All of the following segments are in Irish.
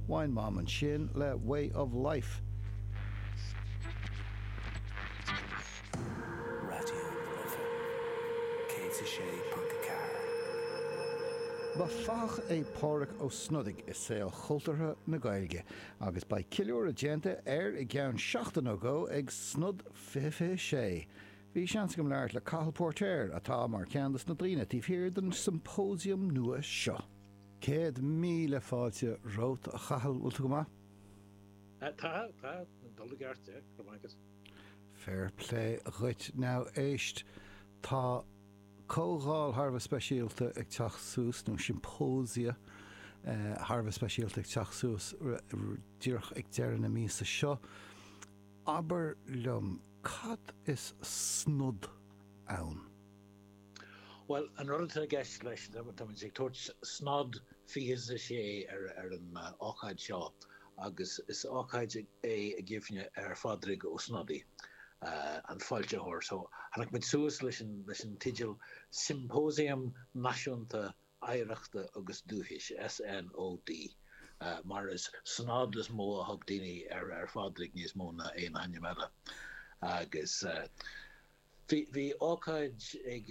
Bhain Mam ansin le Way of Life. Raidió na Life 106.4. Ba fathach é Pádraig Ó Snodaigh i saol chultúrtha na Gaeilge agus beidh ceiliúradh déanta air i gceann seachtain nó dhó ag Snod 2026. Bhí seans agam labhairt le Cathal Póirtéir, atá mar cheann dos na daoine taobh thiar den symposium nua seo. Céad míle fáilte romhat, a Chathail, bhfuil tú go maith? Tá, tá, ag dul i gceart, go raibh maith agat. Fair plé dhuit. Now éist, tá comhdháil thar a bheith speisialta ag teacht suas, nó symposia thar a bheith speisialta ag teacht suas díreach ag deireadh na míosa seo. Abair liom cad is Snod ann? Bhuel, an rud atá i gceist leis, táimid ag tabhairt Snod 26 ar an ócáid seo agus is ócáid é i gcuimhne ar Phádraig Ó Snodaigh, an foilsitheoir. So, tháinig muid suas leis an teideal Symposium Náisiúnta Oidhreachta agus Dúchais, SNOD, mar is Snod is mó a thug daoine ar Phádraig níos mó ná aon ainm eile, agus bhí ócáid ag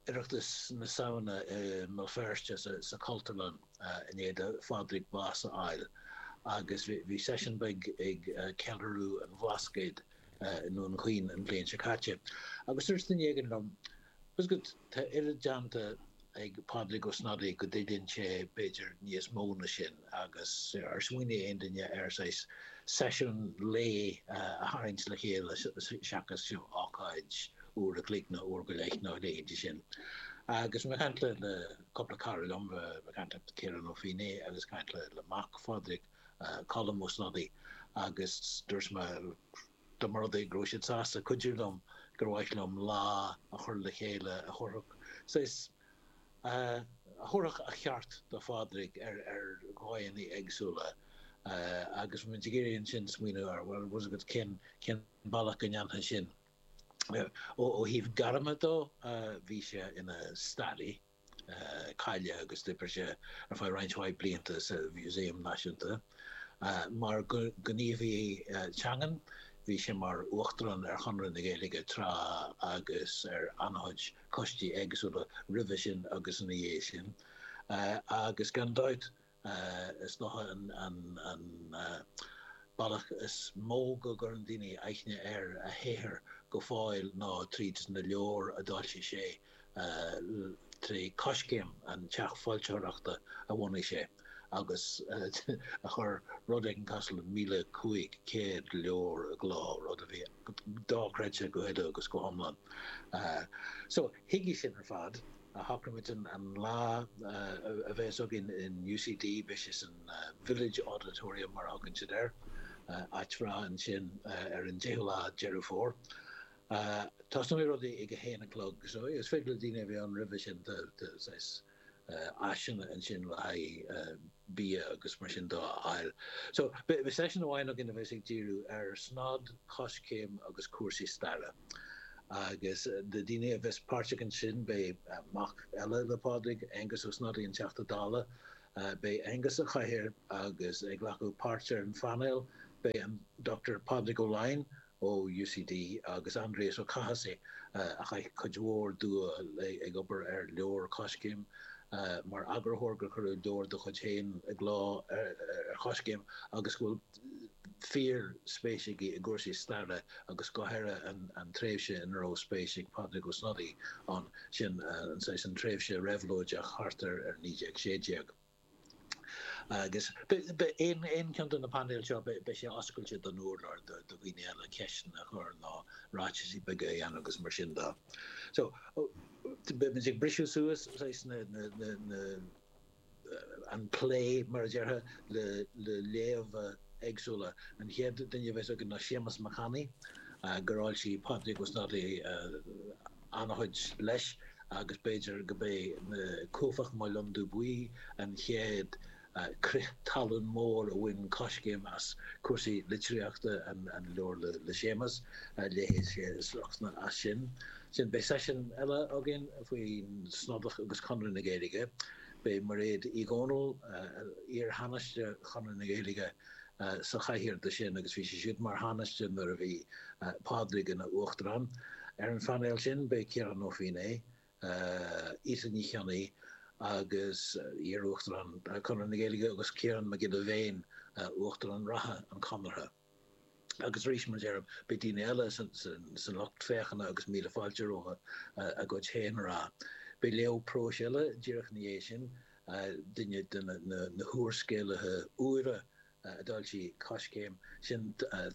Oireachtas na Samhna i mBéal Feirste sa Chultúrlann i ndiaidh do Phádraig bás a fháil agus bhí seisiún beag ag Ceiliúradh an Bhlascaoid i nDún Chaoin an bhliain seo caite agus dúirt duine éigin liom, 'Bhfuil 'fhios agat, Tá oiread déanta ag Pádraig Ó Snodaigh go dtuilleann sé b'fhéidir níos mó ná sin agus ar smaoinigh aon duine ar saghas seisiún lae a tharraingt le chéile seachas seo ócáid uair a chloig nó uair go leith nó rud éigin sin. Agus mé ag caint le cúpla cara liom, mé ag caint le Ciarán Ó Feinneadha agus ag caint le mac Phádraig, Colm Ó Snodaigh, agus dúirt mé, Dá mba rud é go raibh siad sásta cuidiú liom, gur mhaith liom lá a chur le chéile a thabharfadh saghas, a thabharfadh a cheart do Phádraig ar dhóigheanna éagsúla. Agus bhí muid ag iarraidh ansin smaoineamh ar, bhuel, tá's agat, cén bealach go ndéanfainn sin. Ó thaobh gairme dó, bhí sé ina staraí. cáilithe agus d'oibrigh sé ar feadh roinnt mhaith blianta sa Mhúsaem Náisiúnta. Mar ghníomhaí teangan, bhí sé mar Uachtarán ar Chonradh na Gaeilge tráth agus ar an-chuid coistí éagsúla roimhe sin agus ina dhiaidh sin, agus gan dabht Is dócha an bealach is mó go gcuireann daoine aithne ar a shaothar go fóill ná tríd na leabhair a d'fhoilsigh sé, trí Coiscéim, an teach foilsitheoireachta a bhunaigh sé agus a chuir rud éigin cosúil le 1,500 leabhar i gcló, rud a bhí dochreidte go huile agus go hiomlán. So, chuige sin ar fad. a shocraigh muid an lá a bheas againn in UCD, beidh sé san Village Auditorium, mar a thugann siad air, áit bhreá ansin, ar an 10ú lá Deireadh Fómhair. Tosnóidh rudaí ag a haon a chlog, so is féidir le daoine a bheith ann roimhe sin, tá saghas áiseanna ansin le haghaidh bia agus mar sin dó a fháil. So, beidh seisiún amháin againn a bheas ag díriú ar Snodach, Coiscéim agus cúrsaí staire. Agus na daoine a bheas páirteach ansin, beidh mac eile le Pádraig, Aengus Ó Snodaigh, an Teachta Dála. Beidh Aengus sa chathaoir agus ag glacadh páirt ar an phainéal beidh an Dr Pádraig Ó Laighin ó UCD agus Aindrias Ó Cathasaigh a chaith cuid mhór dua ag obair ar leabhar Coiscéim mar eagarthóir, gur cuireadh leabhar dá chuid féin i gcló ar Choiscéim agus go bhfuil. fíorspéis aige i gcúrsaí staire agus go háirithe an tréimhse ina raibh spéis ag Pádraig Ó Snodaigh ann, sin an tréimhse réabhlóideach thart ar 1916. Agus beidh aon cheann de na painéil seo, beidh sé oscailte don urlár do dhaoine eile ceisteanna a chur nó ráitisí beaga a dhéanamh agus mar sin dó. So, beimid ag briseadh suas na. an plé, mar a déarfá, le léamha éagsúla. An chéad duine a bheas againn ná Séamas Mac Annaidh, gur fhoilsigh Pádraig Ó Snodaigh an-chuid leis, agus b'fhéidir gurb é ná Cuaifeach Mo Londubh Buí an chéad crith talún mór a bhain Coiscéim as cúrsaí litríochta, an leabhar le Séamas, léifidh sé sliocht as sin. Ansin beidh seisiún eile againn faoin Snodach agus Conradh na Gaeilge. Beidh Mairéad Uí Dhomhnaill, iar-Thánaiste Chonradh na Gaeilge, sa chathaoir do sin agus bhí sí siúd mar Thánaiste nuair a bhí Pádraig ina Uachtarán. Ar an phainéal sin beidh Ciarán Ó Feinneadha, Íte Ní Chionnaith agus iar-Uachtarán Conradh na Gaeilge agus Ciarán Mac Giolla Bhéin, Uachtarán reatha an Chonartha. Agus arís, mar a deirim, beidh daoine eile san lucht féachana agus míle fáilte rompu a gcuid féin a rá. Beidh léamh próis eile díreach ina dhiaidh sin, duine de na húrscéalaithe úire a d'fhoilsigh Coiscéim, sin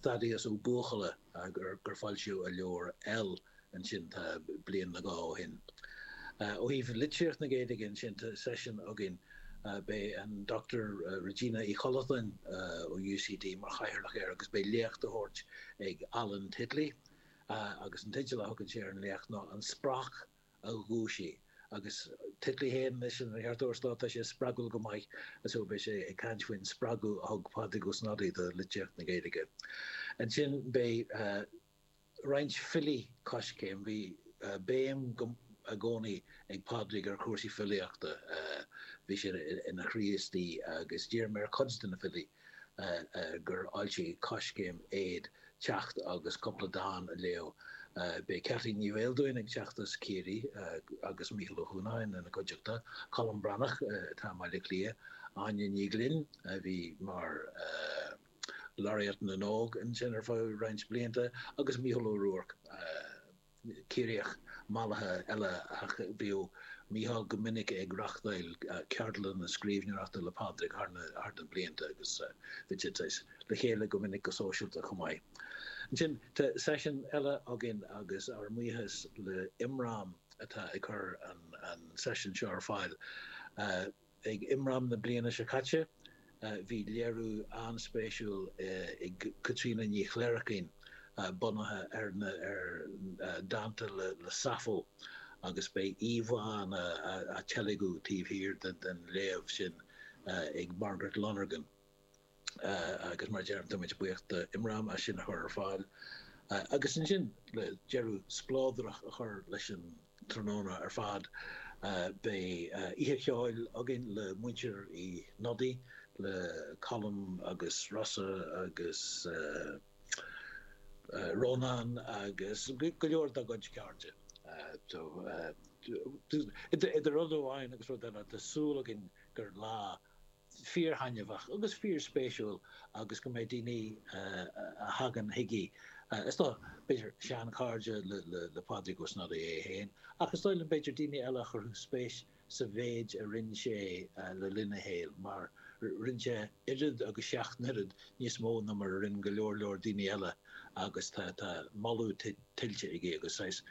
Thaddeus Ó Buachalla gur foilsíodh a leabhar EL ansin tá bliain nó dhó ó shin. Ó thaobh litríocht na Gaeilge ansin tá seisiún againn, beidh an Dr Regina Uí Chollatáin ó UCD mar chathaoirleach air agus beidh léacht á tabhairt ag Alan Titley agus an teideal a thugann sé ar an léacht ná An Spreac a Dhúisigh agus Titley fhéin anois ina Cheartóir Stáit tá sé spreagúil go maith so beidh sé ag caint faoin spreagadh a thug Pádraig Ó Snodaigh do litríocht na Gaeilge. Ansin beidh. roinnt filí Coiscéim. Bhí béim i gcónaí ag Pádraig ar chúrsaí filíochta, bhí sé ina Chríostaí agus d'iarr mé ar chuid de na filí gur fhoilsigh Coiscéim iad teacht agus cúpla dán a léamh. Beidh Ceaití Ní Bheildiúin ag teacht as Ciarraí agus Mícheál Ó hUanacháin ina cuideachta, Colm Breathnach atá i mBaile Átha Cliath, Áine Ní Ghlinn a bhí mar. Laureate na nÓg ansin ar feadh roinnt blianta agus Mícheál Ó Ruairc, Ciarraíoch mallaithe eile, ach bhíodh Mícheál go minic ag reachtáil ceardlanna scríbhneoireachta le Pádraig thar na blianta agus bhídís le chéile go minic go sóisialta chomh maith. Ansin tá seisiún eile againn agus ár mbuíochas le Imram atá ag cur an seisiúin seo ar fáil. Ag Imram na bliana seo caite, bhí léiriú an-spéisiúil ag Caitríona Ní Chléirichín bunaithe ar na dánta le Sappho agus beidh íomhánna á dteilgean taobh thiar den léamh sin ag Margaret Lonergan. agus mar a deirim, tá muid buíoch d'IMRAM as sin a chur ar fáil agus ansin, le deireadh spleodrach a chur leis an tráthnóna ar fad, beidh oíche cheoil againn le Muintir Uí Shnodaigh, le Colm agus Rossa agus Rónán agus go leor dá gcuid cairde. So idir rud amháin agus rud eile, tá súil againn gur lá. fíorthaitneamhach agus fíorspéisiúil agus go mbeidh daoine a thagann chuige, is dóigh, b'fhéidir seanchairde le Pádraig Ó Snodaigh é féin ach is dóigh liom b'fhéidir daoine eile go gcuirfidh spéis sa mhéid a rinne sé le linn a shaoil mar rinne sé oiread agus seacht n-oiread níos mó ná mar a rinne go leor leor daoine eile agus tá, tá moladh tuillte aige agus saghas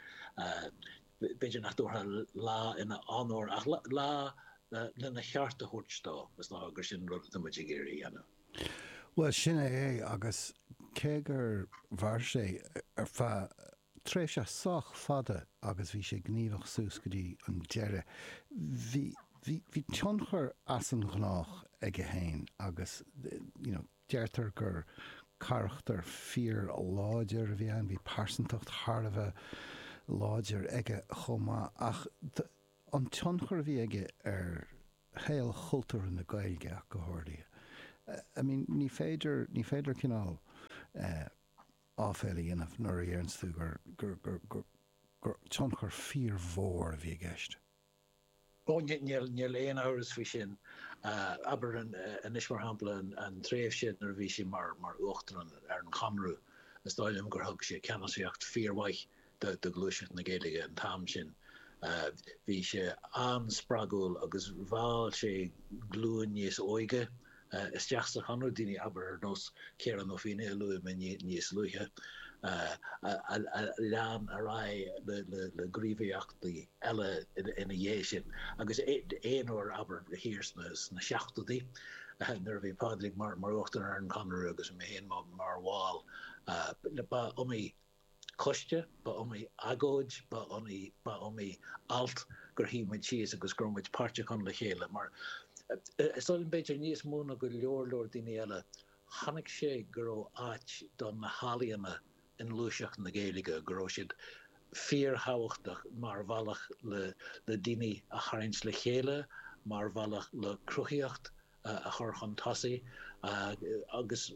B'fhéidir nach dtabharfá lá ina onóir ach lá lena cheart a thabhairt dó. Is dócha gur sin rud atá muid ag iarraidh a dhéanamh. Bhuel, sin é é, agus cé gur mhair sé ar feadh tréimhse sách fada agus bhí sé gníomhach suas go dtí an deireadh, bhí, bhí tionchar as an ghnách aige féin agus, you know, Deirtear gur carachtar fíor-láidir a bhí ann, bhí pearsantacht thar a bheith láidir aige chomh maith. Ach an tionchar a bhí aige ar shaol chultúir na Gaeilge ach go háirithe. I mean ní féidir, ní féidir cineál eh áibhéil a dhéanamh nuair a dhéarann tú gur, gur, gur, gur, gur tionchar fíor-mhór a bhí i gceist. Ó, níl aon amhras faoi sin. Abair anois, mar shampla, an tréimhse nuair a bhí sé mar uachtarán ar an Chonradh, is dóigh liom gur thug sé ceannasaíocht fíormhaith do ghluaiseacht na Gaeilge an t-am sin. Bhí sé an-spreagúil agus mheall sé glúin níos óige. isteach sa Chonradh, daoine, abair, ar nós Ciara nó Fíona, a luaigh mé níos luaithe, a lean ar aghaidh le gníomhaíochtaí eile ina dhiaidh sin. Agus aon uair, abair, thiar sna seachtóidí, nuair a bhí Pádraig mar Uachtarán ar an Chonradh agus mé féin mar bhall, ba iomaí Coiste, ba iomaí agóid, ba iomaí, ba iomaí alt gur shuigh muid síos agus go raibh muid páirteach ann le chéile. Mar is dóigh liom b'fhéidir níos mó ná go leor, leor daoine eile, chonaic sé go raibh áit do na healaíona i ngluaiseacht na Gaeilge, go raibh siad fíorthábhachtach mar bhealach le daoine a tharraingt le chéile, mar bhealach le cruthaitheacht a chur chun tosaigh agus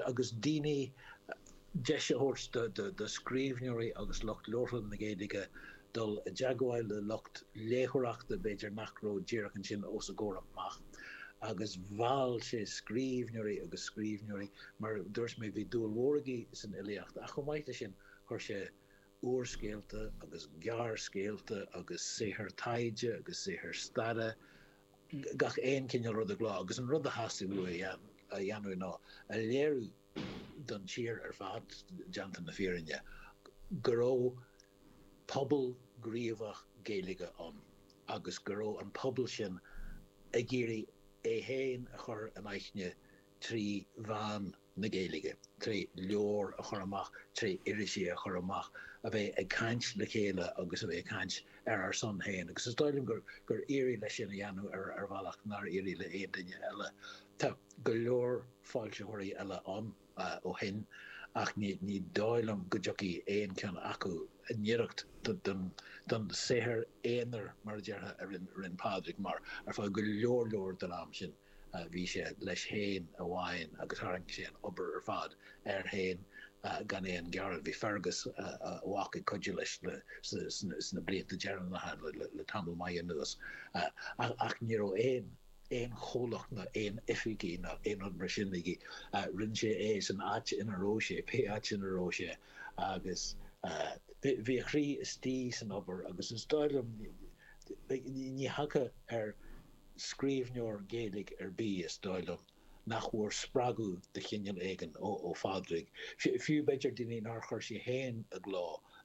agus daoine, deis a thabhairt do scríbhneoirí agus lucht labhartha na Gaeilge dul i dteagmháil le lucht léitheoireachta b'fhéidir nach raibh díreach ansin os a gcomhair amach. Agus mheall sé scríbhneoirí agus scríbhneoirí, mar a dúirt mé, bhí dúil mhór aige san fhilíocht ach chomh maith leis sin chuir sé úrscéalta agus gearrscéalta agus saothair taighde agus saothair staire, gach aon chineál rud i gcló, agus an rud a theastaigh uaidh a dhéanamh ná a léiriú don tír ar fad, déanta na fírinne, go raibh pobal gníomhach Gaeilge ann agus go raibh an pobal sin ag iarraidh é féin a chur in aithne trí mheán na Gaeilge, trí leabhair a chur amach, trí irisí a chur amach, a bheith ag caint le chéile agus a bheith ag caint ar ár son féin. Agus is dóigh liom gur éirigh leis sin a dhéanamh ar bhealach nár éirigh le aon duine eile. Tá go leor foilsitheoirí eile ann ó shin ach ní dóigh liom go dtiocfaidh aon cheann acu i ngiorracht don saothar aonair, mar a déarfá, a rinne Pádraig, mar ar feadh go leor leor den am sin. Bhí sé leis féin amháin agus tharraing sé an obair ar fad air féin gan aon ghearán. Bhí Fergus, a mhac, ag cuidiú leis sna blianta deireanacha le tamall maith anuas ach ní raibh aon chomhlacht ná aon oifig ná aon rud mar sin aige. Rinne sé é san áit ina raibh sé, pé áit ina raibh sé, agus bhí a chroí istigh san obair agus is dóigh liom ní thiocfá ar. scríbhneoir Gaeilge ar bith, is dóigh liom, nach bhfuair spreagadh de chineál éigin ó Phádraig, fiú b'fhéidir daoine nár chuir sé féin i gcló,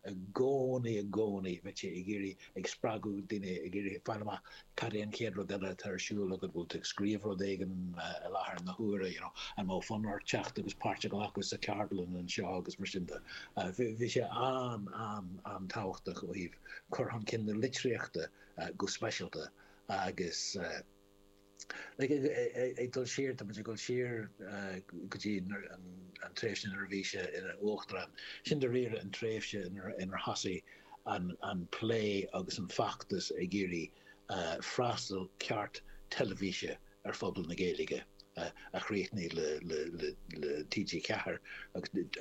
i gcónaí, i gcónaí bheadh sé ag iarraidh ag spreagadh daoine, ag iarraidh fáil amach cad é an chéad rud eile atá ar siúl agat, bhfuil tú ag scríobh rud éigin i láthair na huaire, you know, an mbeadh fonn ort teacht agus páirt a ghlacadh sa cheardlann seo agus mar sin de. Bhí sé an-an-an-tábhachtach ó thaobh cur chun cinn na litríochta go speisialta. Agus ag dul siar, tá muid ag dul siar go dtí an tréimhse nuair a bhí sé ina uachtarán. Sin dáiríre an tréimhse inar thosaigh an plé agus an feachtas ag iarraidh freastal ceart teilifíse ar phobal na Gaeilge, a chríochnaigh le TG4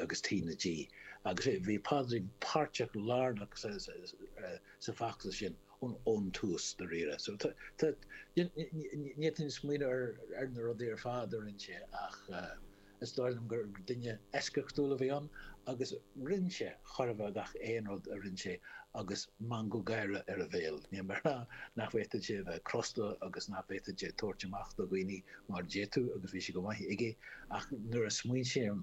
agus T na G. Agus bhí Paddy páirteach lárnach sa bhfeachtas sin ón tús, dáiríre. So, n'fhéadfainn smaoineamh ar na rudaí ar fad a rinne sé ach is dóigh liom gur duine eisceachtúil a bhí ann agus rinne sé, chuirfeadh, gach aon rud a rinne sé agus meangadh gáire ar a bhéal. Níl mé ag rá nach bhféadfadh sé a bheith crosta agus nach bhféadfadh sé tabhairt amach do dhaoine mar d'fhéadfadh agus bhí sé go maith aige ach nuair a smaoiním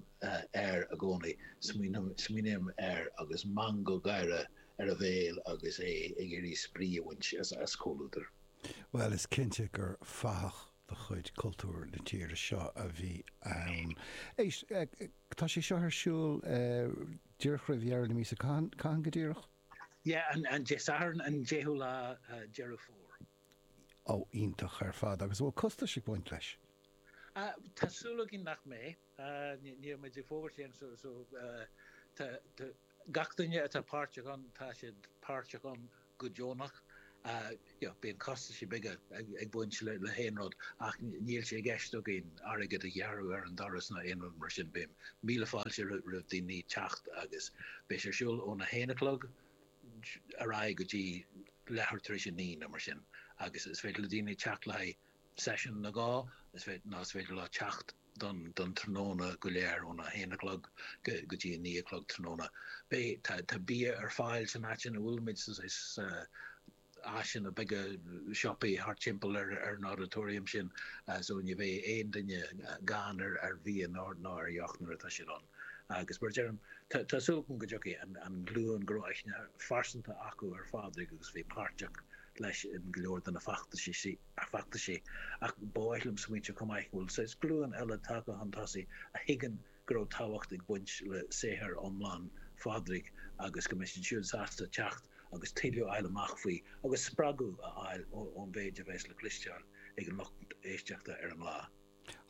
air i gcónaí, smaoiním air agus meangadh gáire ar a bhéal agus é ag iarraidh spraoi a bhaint as comhluadar. Bhuel, is cinnte gur fathach de chuid cultúr na tíre seo a bhí ann. Éist, tá sé seo ar siúl díreach roimh dheireadh na míosa, cathain go díreach? Yeah, an Satharn, an 10ú lá Deireadh Fómhair. Oh, iontach ar fad. Agus an bhfuil costais ag baint leis? Tá súil againn nach mbeidh. Níl muid ag fógairt aon, so, gach duine atá páirteach ann, tá siad páirteach ann go deonach. Bíonn costaisí beaga ag baint le haon rud ach níl sé i gceist againn airgead a ghearradh ar an doras ná aon rud mar sin. Beidh míle fáilte roimh daoine teacht agus beidh sé ar siúl óna haon a chlog ar aghaidh go dtí leathuair tar éis a naoi nó mar sin agus is féidir le daoine teacht le haghaidh seisiún nó dhó nó is féidir leo teacht an tráthnóna go léir, óna haon a chlog go dtí a naoi a chlog tráthnóna. Beidh, tá bia ar fáil san áit ina bhfuil muid, tá áiseanna beaga siopaí thart timpeall ar an Auditorium sin, so ní bheidh aon duine gann ar bhia ná ar dheoch nuair atá siad ann. Agus mar a deirim, tá súil agam go dtiocfaidh an ghlúin go raibh aithne phearsanta acu ar Phádraig agus a bhí páirteach leis in go leor de na feachtaisí. feachtais é, ach ba mhaith liom smaointeamh chomh maith go bhfuil saghas glúin eile tagtha chun tosaigh a thuigeann go raibh tábhacht ag baint le saothar iomlán Phádraig agus go mbeidh siad siúd sásta teacht agus tuilleadh a fháil amach faoi agus spreagadh a fháil ón mhéid a bheas le cloisteáil ag an lucht éisteachta ar an lá.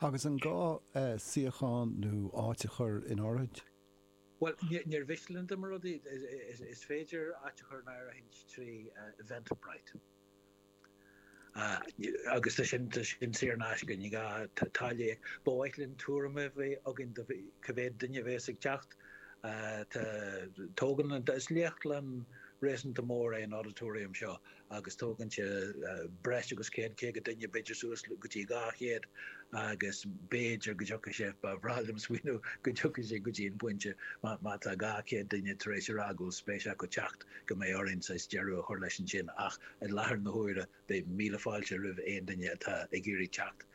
Agus an gá suíochán nó áit a chur in áirithint? Bhuel, níor mhiste linn dá mba rud é, is féidir áit a chur in áirithint trí Eventbrite. Agus tá sin saor in aisce, níl aon táille. Ba mhaith linn tuairim a bheith againn de cé mhéad duine a bheas ag teacht. Tá, tógann, is léachtlann réasúnta mór é an auditorium seo agus tógann sé breis agus céad caoga duine, b'fhéidir suas go dtí dhá chéad agus b'fhéidir go dtiocfaidh sé, ba bhreá liom smaoineamh go dtiocfaidh sé go dtí an pointe má tá dhá chéad duine tar éis a rá go bhfuil spéis acu teacht go mbeidh orainn saghas deireadh a chur leis ansin ach I láthair na huaire, beidh míle fáilte roimh aon duine atá ag iarraidh teacht.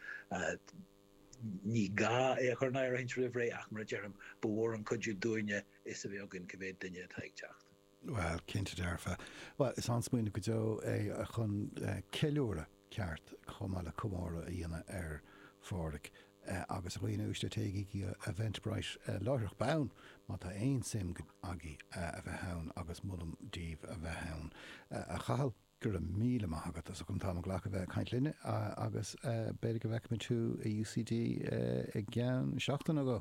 Ní gá é a chur in áirithint roimh ré, ach mar a deirim, ba mhór an cuidiú dúinne fhios a bheith againn cé mhéad duine atá ag teacht. Bhuel, cinnte dearfa. Bhuel, is an-smaoineamh go deo é chun ceiliúradh ceart chomh maith le comóradh a dhéanamh ar Phádraig. agus a dhaoine uaisle, téigí go Eventbrite láithreach bonn má tá aon suim agaibh a bheith ann agus molaim daoibh a bheith ann. A Chathail, go raibh míle maith agat as ucht an t-am a ghlacadh bheith ag caint linn agus b'fhéidir go bhfeicfimid thú i UCD i gceann seachtain nó dhó.